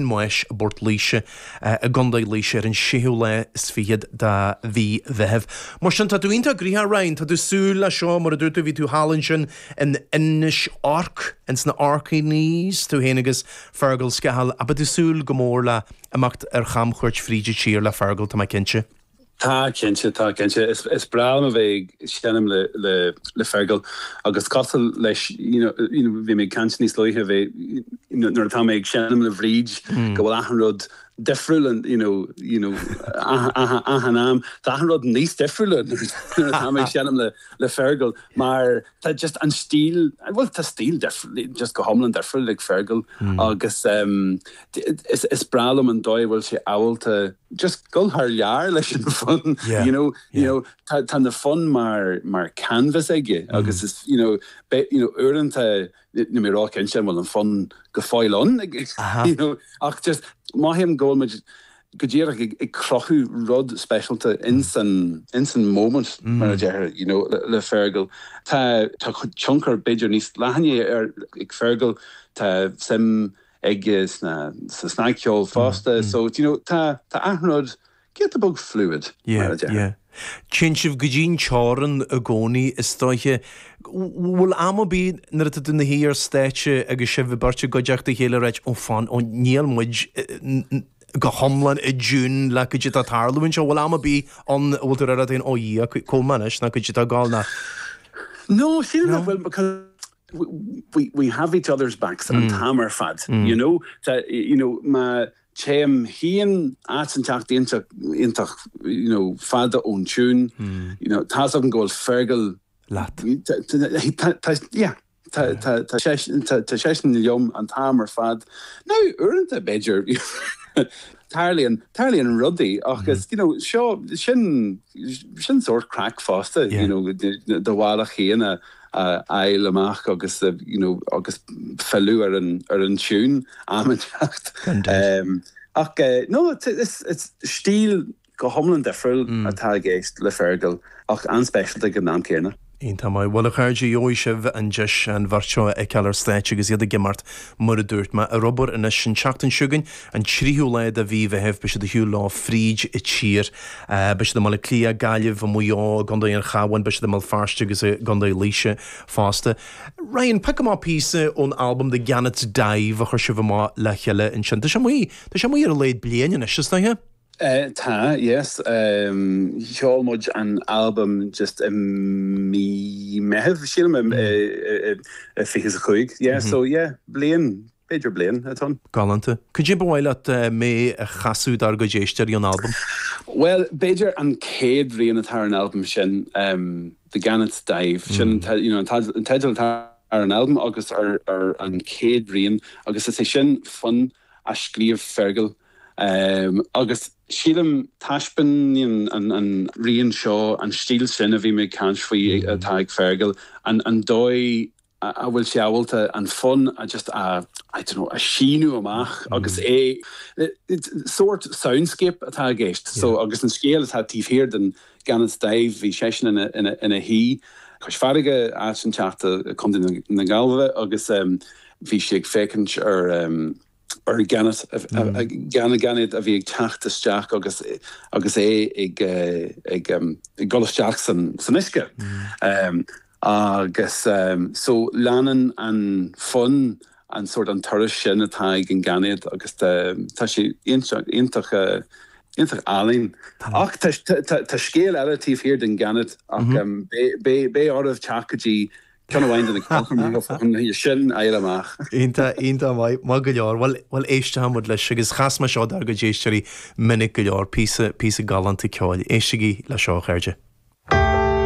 Maois i bPort Laoise i gContae Laoise ar an séú lá is fichead de mhí Mheithimh. Mar sin, tá tú iontach gnoitheach, a Ryan! Tá tú ag súil leis seo, mar a dúirt tú, bhí tú thall ansin in Inis Orc, ins na Orkneys, tú fhéin agus Fergal Scahill, ach beidh tú ag súil go mór le imeacht ar chamchuairt fríd an tír le Fergal, tá mé cinnte. Tá cinnte, tá cinnte. Is breá liom a bheith ag seinm le Fergal agus cosúil leis, you know, bhí mé ag caint níos luaithe, bheith, you know, nuair atá mé ag seinm le Bhríd go bhfuil achan rud difriúil and, you know, you know, achan am, tá achan rud níos difriúla nuair atá mé ag seinm le Fergal mar tá just an stíl, bhuel tá stíl difriúil, just go hiomlán difriúil ag Fergal agus is breá liom an dóigh a bhfuil sé ábalta, Just dul thar lear leis an fonn, you know, you know, tá, tá na fonn mar, mar canvas aige agus is, you know, be, you know, uaireanta níl mé róchinnte an bhfuil an fonn go fóill ann, you know, ach just mothaím go bhfuil muid go díreach ag, ag cruthú rud speisialta ins an, ins an moment, mar a deirtear, you know, le, le Fergal. Tá, tá tionchar b'fhéidir níos leathanaí ar, ag Fergal, tá suim aige sna sa snagcheol fosta so do you know tá tá achan rud giota beag fluid mar a deir. Yeah yeah. Téann sibh go dtí an teorainn i gcónaí is dóiche. Bhfuil am ar bith nuair atá tú ina shuí ar stáitse agus sibh beirt i gcuideachta a chéile ag ráit, oh fan oh níl muid go hiomlán i dtiún le caidé atá ag tarlú anseo, bhfuil am ar bith ann a bhfuil tú ag rá duit féin, oh Dhia, cá bhfuil mé anois nó caidé atá ag gabháil ná? No sílim nach bhfuil because. we have each other's backs an t-am ar fad, you know. Tá, you know, má théim féin áit inteacht iontach iontach, you know, fada ón tiún, you know, tá's agam go bhfuil Fergal leat. Tá, yeah, tá seisean liom an t-am ar fad. Now, uaireanta, b'fhéidir, tarlaíonn, tarlaíonn rudaí ach is, you know, seo, sin, sin sórt craic fosta, you know, do bhealach féin a, a fháil amach agus you know agus filleadh ar an ar an tune am inteacht ach no stíl go hiomlán difriúil atá i gceist le Fergal ach an-speisialta ag an am céanna. Iontach maith. Bhuel a chairde, gheobhaidh sibh an deis an bheirt seo a fheiceáil ar stáitse agus iad ag imeacht Mar a dúirt mé ar obair anois, an tseachtain seo chugainn, an tríú lá de mhí Mheithimh, beidh siad ar shiúl leo fríd a' tír. Beidh siad i mBaile Átha Cliath, Gaillimh, i Maigh Eo, i gCondae an Chabháin, beidh siad i mBéal Feirste agus i gCondae Laoise fosta. Ryan, pioc amach píosa ón albam The Gannet's Dive a chuir sibh amach le chéile ansin. Tá sé amuigh, tá sé amuigh ar a laghad bliain anois, is dóiche? Tá, yes. Sheol muid an albam just i mí Meitheamh, sílim, i fiche is a cúig. Yeah, so yeah, bliain, b'fhéidir bliain ó shin. Galánta. Cad é ba mhaith leat mé a chasadh dár gcuid éisteoirí ón albam? Bhuel, b'fhéidir an chéad rian atá ar an albam sin, The Gannet's Dive. Sin, you know, an teideal atá ar an albam agus ar an chéad rian agus is é sin fonn a scríobh Fergal Agus sílim, taispeáineann an rian seo an stíl sin a bhí mé ag caint faoi atá ag Fergal, an dóigh a bhfuil sé ábalta an fonn just a, I don't know, a shíneadh amach agus é, sórt soundscape atá i gceist. So, agus an scéal atá taobh thiar den Gannet's Dive, bhí seisean ina shuí cois farraige, áit éinteacht i, Co. na Gaillimhe, agus bhí sé ag féachaint ar ar ghainéad a bhí ag teacht isteach agus é ag dul isteach san uisce. Agus so leanann an fonn an sórt an turas sin atá ag an ngainéad agus tá sé iontach álainn. Ach tá scéal eile taobh thiar den ghainéad ach beidh oraibh teacht go dtí Ceann amháin de na ceolchoirmeacha fá choinne sin a fháil amach. Iontach, iontach maith, maith go leor. Bhuel, bhuel, éistfidh muid leis agus chas mé seo dár gcuid éisteoirí go minic go leor, píosa, píosa galánta ceoil. Éistigí leis seo, a chairde.